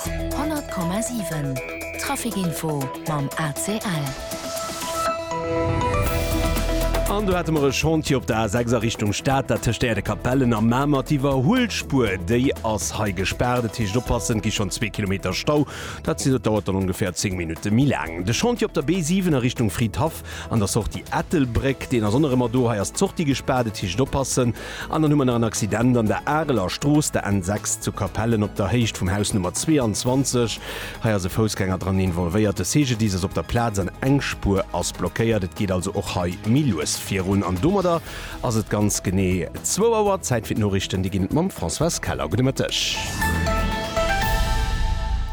100,7 Trafic Info mam ACL. An do hate mer e Chantier op der A6 a Richtung Stad, dat tëscht Äerdekapellen a Mamer. D'Iwwerhuelspuer, déi ass hei gespaart. Dat heescht, oppassen, et gi schonn zwee Kilometer Stau. Dat heescht, et dauert dann ongeféier 10 Minutte méi laang. De Chantier op der B7 a Richtung Fridhaff, An der Sortie Ettelbréck, deen ass och nach ëmmer do, hei ass d'Sortie gespaart, et heescht oppassen. An dann hu mer nach en Accident an der Areler Strooss, der N6 zu Capellen op der Héicht vum Haus Nummer 22. Hei ass e Foussgänger dran involvéiert, de CGDIS ass op der Plaz an eng Spuer ass blockéiert. Et geet also och hei méi lues virun an domadder Ass et ganz genee zwou Auer. Zäit fir d'Noriichten, déi ginn et mam Françoise Keller. Gudde Mëtteg.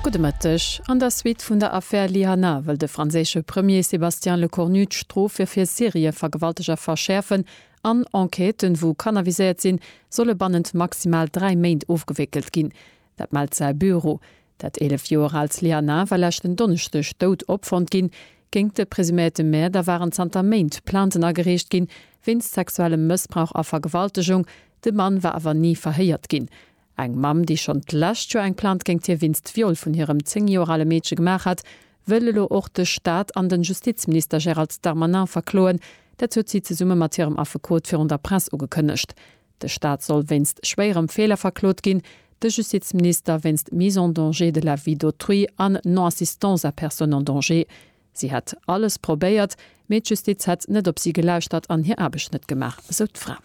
Gudde Mëtteg. An der Suite vun der Affär Lyana wëll de franséische Premier Sébastien Lecornu d'Strofe fir Serievergewalteger verschäerfen an Enquêten, wou Kanner viséiert sinn, solle bannent maximal dräi Méint ofgewéckelt ginn. Dat mellt säi Büro. Dat 11 Joer aalt Sliana war leschten Donneschdeg dout opfonnt ginn. Géingt de presuméierte Mäerder waren zanter Méint Plainten agereecht ginn, wéinst sexuellem Mëssbrauch a Vergewaltegung. De Mann war awer ni verhéiert ginn. Eng Mamm, déi schonn d'lescht Joer eng Plainte géingt hie wéinst Viol vun hirem 10 Joer ale Meedche gemaach hat, wëll elo och de Staat an de Justizminister Gérald Darmanin verkloen. Dat huet si zesumme mat hirem Affekot virun der Press ugekënnegt. De Staat soll wéinst schwéierem Feeler verklot ginn, de Justizminister wéinst Mise en danger de la vie d'autrui an Non-assistance à personne en danger. Si hätt alles probéiert, mee d'Justiz hätt net op si gelauschtert an hir Aarbecht net gemaach, esou d'Fra.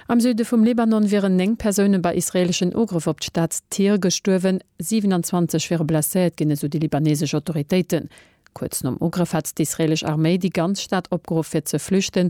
Am Süde vum Libanon wieren 9 Persoune bei israeeleschen Ugrëff op d'Stad Tyr gestuerwen, 27 wiere blesséiert ginn, esou déi libaneesesch Autoritéiten. Kuerz nom Ugrëff hat d'israeelesch Arméi déi ganz Stad opgeruff fir ze flüchten.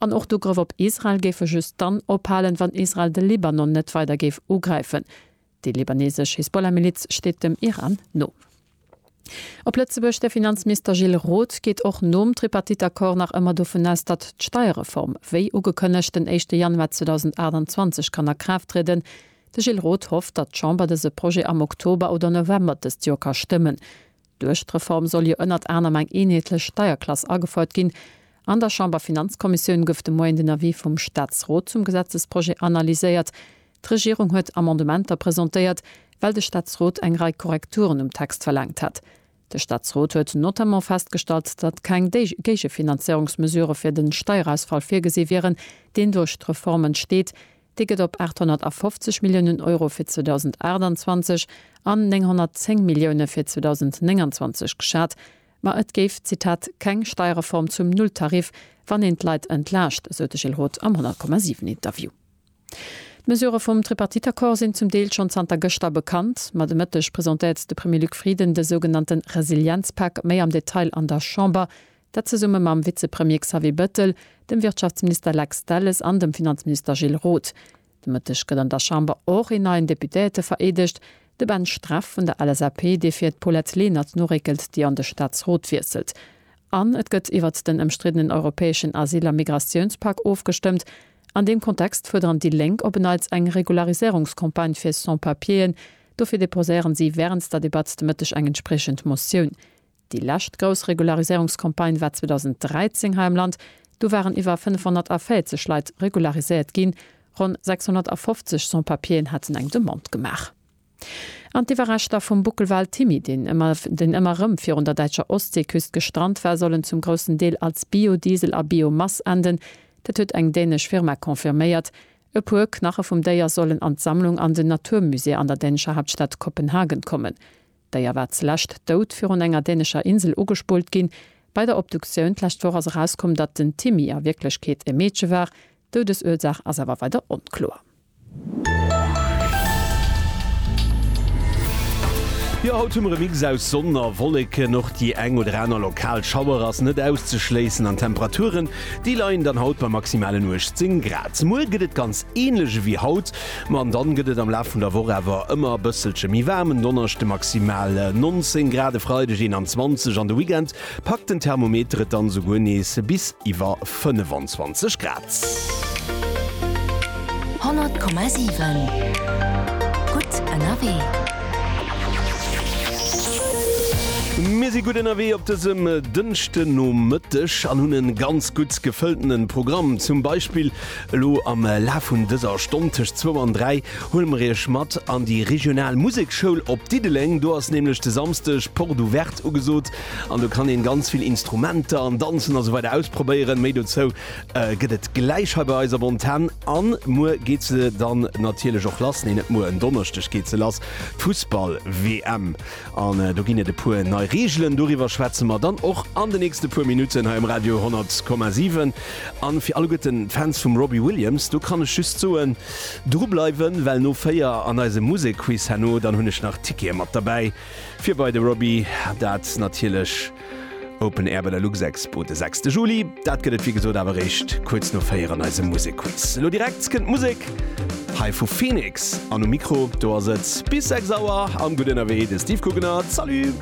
An och d'Ugrëff op Israel géife just dann ophalen, wann Israel de Libanon net weider géif ugräifen. Déi libanesesch Hisbollah-Miliz steet dem Iran no. Op Lëtzebuerg, De Finanzminister Gilles Roth geet och nom Tripartite-Accord nach ëmmer dovun aus, datt d'Steierreform, wéi ugekënnegt, den éischte Januar 2028 kann a Kraaft trieden. De Gilles Roth hofft, datt d'Chamber dëse Projet am Oktober oder November dëst Joer ka stëmmen. Duerch d'Reform soll jo ënnert anerem eng eenheetlech Steierklass agefouert ginn. An der Chamberfinanzkommissioun gouf de Moien den Avis vum Staatsrot zum Gesetzesprojet analyséiert. D'Regierung huet Amendementer presentéiert, well de Staatsrot eng Rei Korrekturen um Text verlaangt hat. De Staatsrot huet notamment festgestallt, datt keng Géigefinanzéierungsmesurë fir de Steierausfall virgesi wieren, deen duerch d'Reform entsteet, Dee gëtt op 850 Milliounen Euro fir 2028 an 910 Millioune fir 2029 geschat. Ma et géif, Zitat, keng Steierreform zum Nulltarif, wann een d'Leit entlaascht, esou de Gilles Roth am 100,7 Interview. D'Mesurë vum Tripartite-Accord sinn zum Deel schonn zanter gëschter bekannt. Ma de Mëtteg presentéiert de Premier Luc Frieden de sougenannte Resilienzpak méi am Detail an der Chamber. Dat zesumme mam Vizepremier Xavier Bettel, dem Wirtschaftsminister Lex Delles an dem Finanzminister Gilles Roth. De Mëtteg gëtt an der Chamber och een neien Deputéierte vereedegt, de Ben Streff vun der LSAP, dee fir d'Paulette Lenert noréckelt, déi an de Staatsrot wiesselt. An et gëtt iwwert den ëmstriddenen europäeschen Asyl a Migratiounspak ofgestëmmt. An deem Kontext fuerderen déi Lénk op en Neits eng Regulariséierungscampagne fir Sans-Papieren. Dofir deposéieren si wärens der Debatt de Mëtteg eng entspriechend Motioun. Déi lescht grouss Regulariséierungscampagne war 2013 hei am Land. Do waren iwwer 540 Leit regulariséiert ginn. Ronn 650 Sans-Papieren haten eng Demande gemaach. An d'Iwwerreschter vum Buckelwal Timmy, deen ëmmer erëm virun der däitscher Ostseeküst gestrant war, sollen zum groussen Deel als Biodiesel a Biomass enden. Dat huet eng dänesch Firma confirméiert. E puer Knache vum Déier sollen an d'Sammlung an den Naturmusée an der dänescher Haaptstad Kopenhagen kommen. D'Déier war zeläscht dout virun enger dänescher Insel ugespullt ginn. Bei der Obduktioun d'lescht Woch ass erauskomm, datt den Timmy a Wierklechkeet e Meedche war. D'Doudesursaach ass awer weider onkloer. Jo haut hu mer e Mix aus Sonn a Wolleken, och déi eng oder aner lokal Schauer ass net auszeschléissen an d'Temperaturen déi leien dann haut bei maximalen 18 Grad. Muer gëtt et ganz änlech ewéi haut, Ma an dann gëtt et am Laf vun der Woch awer ëmmer e bësselche méi waarm, en Donneschde maximal 19 Grad, e Freideg 21, an de Weekend packt den Thermometer et dann souguer nees bis iwwer 25 Grad. 100,7 Gutt ënnerwee. Mir si gutt ënnerwee op dësem Dënschdenomëtteg an hunn e ganz gutt gefëlltene Programm. Zum Beispill Elo am Laf vun dëser Stonn tëscht zwou an dräi huele mer iech mat an déi regional Museksschoul op Diddeleng. Do ass nämlech de Samsdeg Porte Ouverte ugesot an do kann een ganz vill Instrumenter an Danzen a sou weider ausprobéieren. Méi dozou gëtt et gläich hei bei eis op Antenn. An muer geet se dann natierlech och lass, nee net muer, en Donneschdeg geet se lass, d'Fussball-WM. An do ginn et e puer nei Reegelen. Doriwwer schwätze mer dann och an de nächste puer Minutten hei um Radio 10,7. An fir alleguerten d'Fans vum Robbie Williams, do kann ech just soen, dru bleiwen, well no 4 an eisem Musekquiz herno, dann hunn ech nach Tickete mat derbäi fir bei de Robbie. Dat natierlech. Open Air bei der Luxexpo de sechste Juli. Dat gëtt et wéi gesot awer eréischt kuerz no véier an eisem Musekquiz. Elo direkt kënnt Musek hei vu Phoenix an um Mikro do ass et bis sechs Auer am Gutt ënnerwee de Steve Guggenert. Salut!